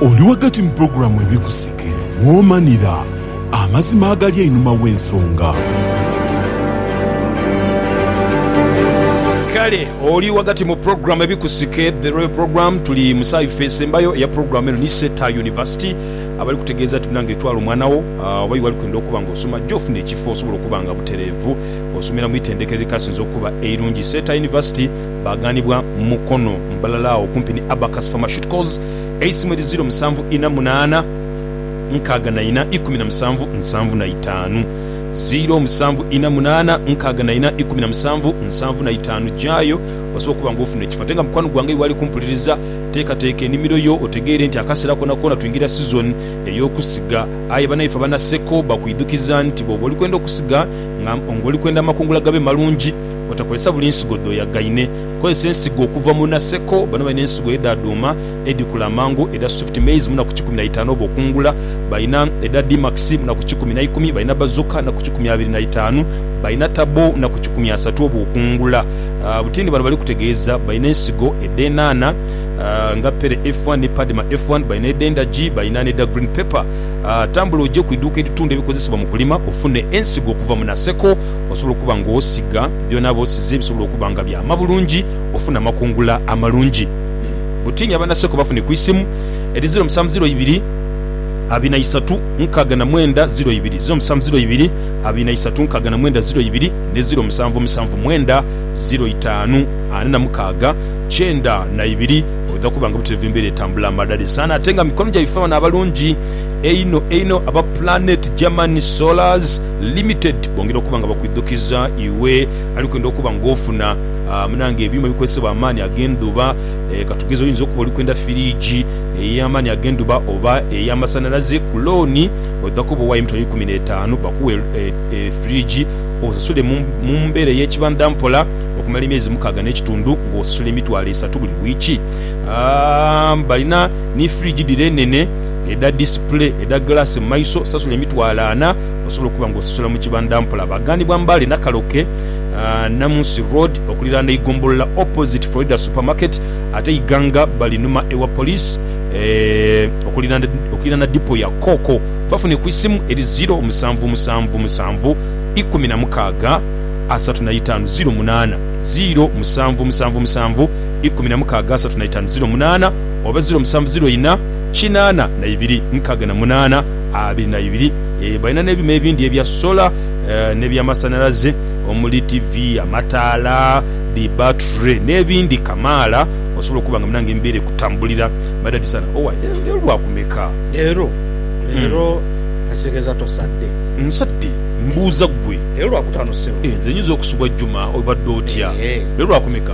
Oli ghagati mu pulogulaamu Ebikusike mw'omanira amazima agali einhuma w'ensonga. Kale oli ghagati mu pulogulaamu Ebikusike, The Royal Programme. Tuli mu saawa ife esembayo eya pulogulaamu eno ni Seeta University, abali kutegeeza nti munange twala omwana wo oba ye wali kwenda okuba nga osoma ajje ofune ekifo osobola okuba nga butereevu osomera mu itendekero erikasinze okuba eirungi. Seeta University baghanibwa Mukono mbalala agho kumpi ni Abacus Pharmaceuticals. eisimu eri ziro musanvu ina munaana nkaaga na ina ikumi na musanvu nsanvu na itaanu, ziro musanvu ina munaana nkaaga na ina ikumi na musanvu nsanvu na itaanu. Gyayo osobola okuba nga ofuna ekifo. Ate nga mukwano gwange y'oali kumpuliriza, teekateeka enimiro yo otegeere nti akaseera koonakoona twingira sizoni ey'okusiga. Aye banaife aba Naseko bakwidhukiza nti bw'oba oli kwenda okusiga nga oli kwenda amakungula gabe malungi, otakozesa buli nsigo dh'oyagaine. Kozesa ensigo okuva mu naseko. Bano balina ensigo edha dhuuma edhikula amangu edha swift maize mu naku kikumi na itaanu oba okungula. Balina edha D-Max mu naku kikumi na ikumi, balina Bazooka mu naku kikumi abiri na itaanu, balina Turbo mu naku kikumi asatu oba okungula. Butindi bano bali kutegeeza balina ensigo edh'enhanha nga Pere F1 ni Padma F1, balina edh'endagi, balina n'edha Green Pepper. Tambula oje ku idhuuka eritunda ebikozesebwa mu kulima ofune ensigo okuva mu naseko. Osobola okuba nga osiga byona bosize ebisobola okuba nga byama bulungi ofune amakungula amalungi. Butiini abanaseko bafune ku isimu eri ziro musanvu ziro ibiri abiri na isatu nkaaga na mwenda ziro ibiri, ziro musanvu ziro ibiri abiri na isatu nkaaga na mwenda ziro ibiri ne ziro musanvu musanvu mwenda ziro itaanu ana na mukaaga kyenda na ibiri. Oidha kuba nga buterevu embeera etambula amadhadhi sana ate nga mikono gyaife bano abalungi einho einho aba Planet German Solars. Limited bongera okuba nga bakwidhukiza iwe alikwenda okuba nga ofuna munange ebyuma ebikozesebwa amaani ag'endhuba. Katugeze oyinza okuba oli kwenda firiigi ey'amaani ag'endhuba oba ey'amasanhalaze ku looni. Oidha kuba owaayo emitwalo eikumi n'etaanu bakuwe firiigi osasule mu mbeera ey'ekibandha mpola okumala emyezi mukaaga n'ekitundu ng'osasula emitwalo esatu buli wiiki. Balina ni firiigi dhire enene. edha display edha glass mu maiso, sasula emitwalo ana osobole okuba nga osasula mu kibandha mpola. Baghanibwa Mbale Nakaloke, Namunsi Road okuliraana eigombolola opposite Florida Supermarket ate Iganga balinuma ewa Police okuliraana dipo ya Coco. Bafune ku isimu eri ziro musanvu musanvu musanvu ikumi na mukaaga asatu na itaanu ziro munaana, ziro musanvu musanvu musanvu ikumi na mukaaga asatu na itaanu ziro munaana oba ziro musanvu ziro ina. kinaana na ibiri, nkaaga na munaana, abiri na ibiri. Balina n'ebyuma ebindi ebya sola n'ebyamasanhalaze omuli tivi, amataala, dhi battery n'ebindi kamaala osobola okuba nga munange emibeera ekutambulira. Madadi sana. Owaaye leero Lwakumeka? Leero? Leero kakitegeeza tosadde? Nsadde. Mbuuza ggwe. Leero Lwakutaano ssebo. Nze nyinza okusubwa Juma obadde otya? Leero Lwakumeka?